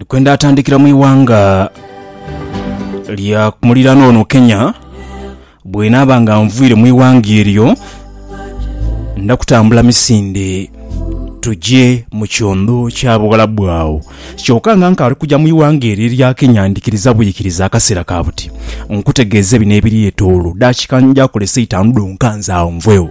Kwenda atandikira mu ighanga lya mulirano ono Kenya bwenaaba nga nviire mu ighanga eryo nda kutambula misinde tugye mu kyondo kya bughalabu agho kyoka nga nkaali kugya mu ighanga eryo erya Kenya ndikiriza bwikiriza akaseera ka buti nkutegeeze bino ebiri etoolo dakika nja kolesa itaanu dhonka nze agho nvwegho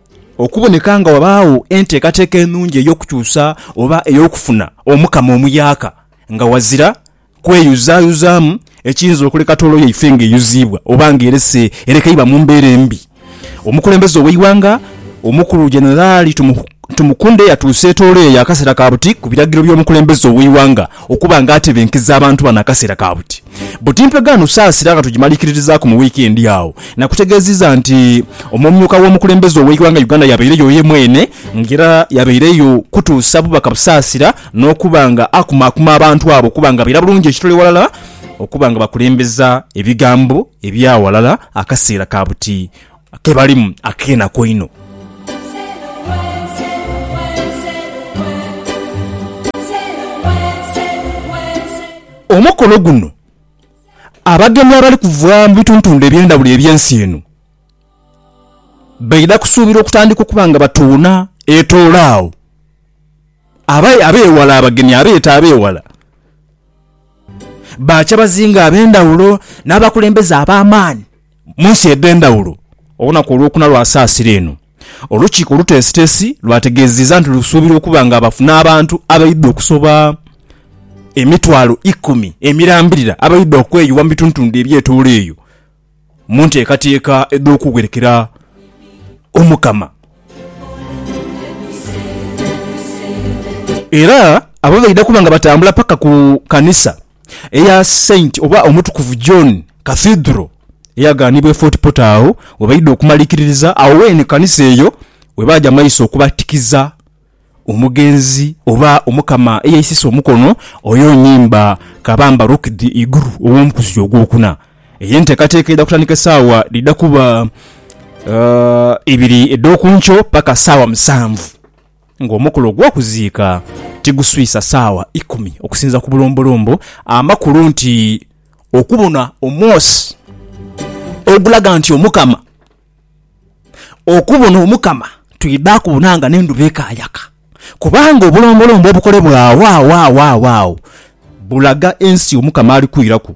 Okuboneka nga wabaagho enteekateeka enungi ey'okukyusa oba ey'okufuna omukamo omuyaaka nga wazira kweyuzaayuzaamu ekiyinza okuleka toolo yaife nga eyuziibwa oba nga erese erekeibwa mu mbeera embi, omukulembeze ow'eighanga omukulu Generali Tumukunde yatuusa etoolo eyo akaseera ka buti ku biragiro by'omukulembeze ow'eighanga okuba nga atebenkeza abantu bano akaseera ka buti. Buti Mpegaano Nsaasira nga tugimalikiririzaaku mu wiikendi agho nakutegeeziza nti omumyuka w'omukulembeze ow'eighanga Uganda yabaireyo ye mwene nga era yabaireyo kutuusa bubaka busaasira n'okuba nga akumaakuma abantu abo okuba nga baira bulungi ekitole ghalala okuba nga bakulembeza ebigambo eby'aghalala akaseera ka buti ke balimu ak'enaku einho. Omukolo guno abagenyi abali kuva mu bituntundu eby'endhaghulo eby'ensi eno baidha kusuubirwa okutandika okuba nga batuuna etoolo agho. Abaidha ab'eghala, abagenyi abeeta ab'eghala baakya bazinga ab'endhaghulo n'abakulembeze ab'amaani. Mu nsi edh'endhawulo olunaku olwokuna lwa saasira eno, olukiiko oluteesiteesi lwategeezeziza nti lusuubira okuba nga bafuna abantu abaidha okusoba emitwalo ikumi emirambirira abaidha okweyugha mu bitundutundhu ebyetoolo eyo mu nteekateeka edh'okugherekera Omukama. Era abo baidha kuba nga batambula paka ku kanisa eya Saint oba Omutukuvu John Cathedral eyaganibwa e Fort Portal agho we baidha okumalikiririza, agho weene kanisa eyo we baaja maiso okubatikiza omugenzi oba Omukama eyaisisa omukono oyo Nyimba Kabamba Rukidhi Iguru ow'omkuzi ogwokuna. Eyo enteekateeka eidha kutandika esaawa dhidha kuba ibiri edh'okunkyo paka saawa musanvu. ng'omukolo ogw'okuziika tiguswisa saawa ikumi okusinza ku bulombolombo, amakulu nti okubona omwosi ogulaga nti Omukama, okubona Omukama twidha kubona nga n'endhuba ekaayaka, kubanga obulombolombo obukolebwa agho agho agho agho agho bulaga ensi Omukama ali kwiraku.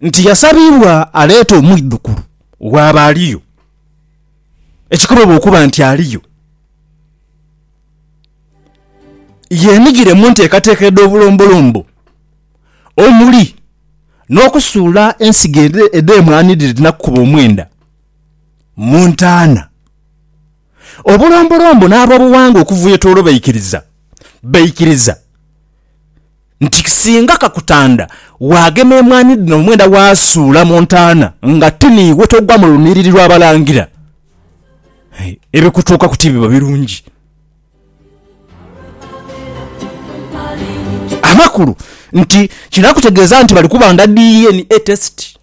nti yasabibwa aleete omwidhukulu bw'aba aliyo, ekikobebwa okuba nti aliyo, yeenhigire mu nteekateeka edh'obulombolombo omuli n'okusuula ensigo edh'emwaanidhidhinaku kuba omwenda mu ntaana. Obulombolombo n'ab'obuwangwa okuvwetoolo baikiriza, baikiriza nti singa kakutanda waagema emwaani dhino omwenda waasuula mu ntaana nga ti niiwe togwa mu lunhiriri lw'abalangira, ebikutuukaku tibiba birungi. Amakulu nti kino akutegeeza nti bali kubanga DNA test.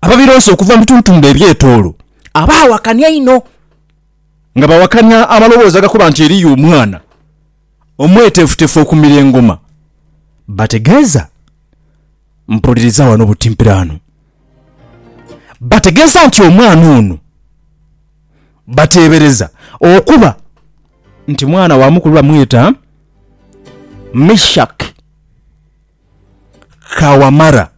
Ababironsa okuva mu bitundutundu eby'etoolo abaawakana einho nga bawakanya amaloboozi agakoba nti eriyo omwana omweteefuteefu okumira engoma bategeeza Mpuliriza wano butimpiraanu bategeeza nti omwana ono bateebereza okuba nti mwana wa mukulu bamweta Mishaki ka Wamara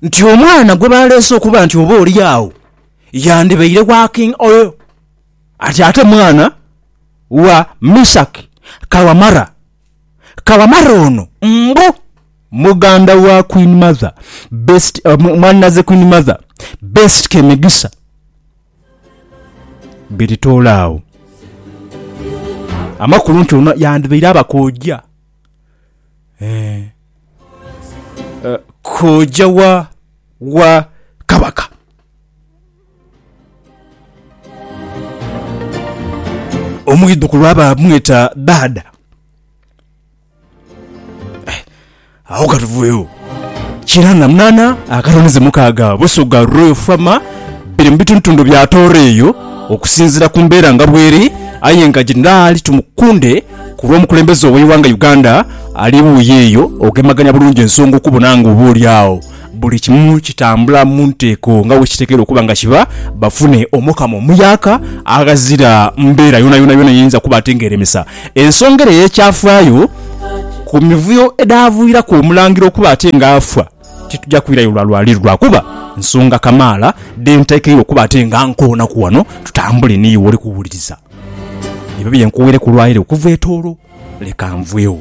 nti omwana gwe baleese okuba nti oba oli agho yandibaire wa King Oyo ati ate mwana wa Misak ka Wamara. Ka Wamara ono mbu muganda wa Queen Mother Best, mwannaze Queen Mother Best Kemigisa Biritoolaagho. Amakulu nti ono yandibaire aba kojja. Kooja wa wa Kabaka? Omwidhukulu aba amweta Dhaadha. Agho ka tuvugheyo. Kinaana munaana akatonize mukaaga Busoga Royal Farmer biri mu bitundutundu bya Tooro eyo okusinziira ku mbeera nga bweri aye nga Jenerali Tumukunde Ku lw'omukulembeze ow'eighanga Uganda ali wuuyo eyo ogemagania bulungi ensonga okubona nga oba oli agho buli kimu kitambula mu nteeko nga bwekitekeirwa okuba nga kiba bafune Omukama omuyaaka aghazira mbeera yonayona yona eyinza kuba ate nga eremesa ensonga ere eyekyafaayo ku mivuyo edhaviiraku Omulangira okuba ate nga afa. Tituja kwirayo lwa lwali lwa kuba nsonga kamaala dhe nteekeire okuba ate nga nkoonaku wano tutambule ni iwe oli kuwuliriza. Ebyo bye nkuweireku lwaire okuva e Tooro, leka nvwegho.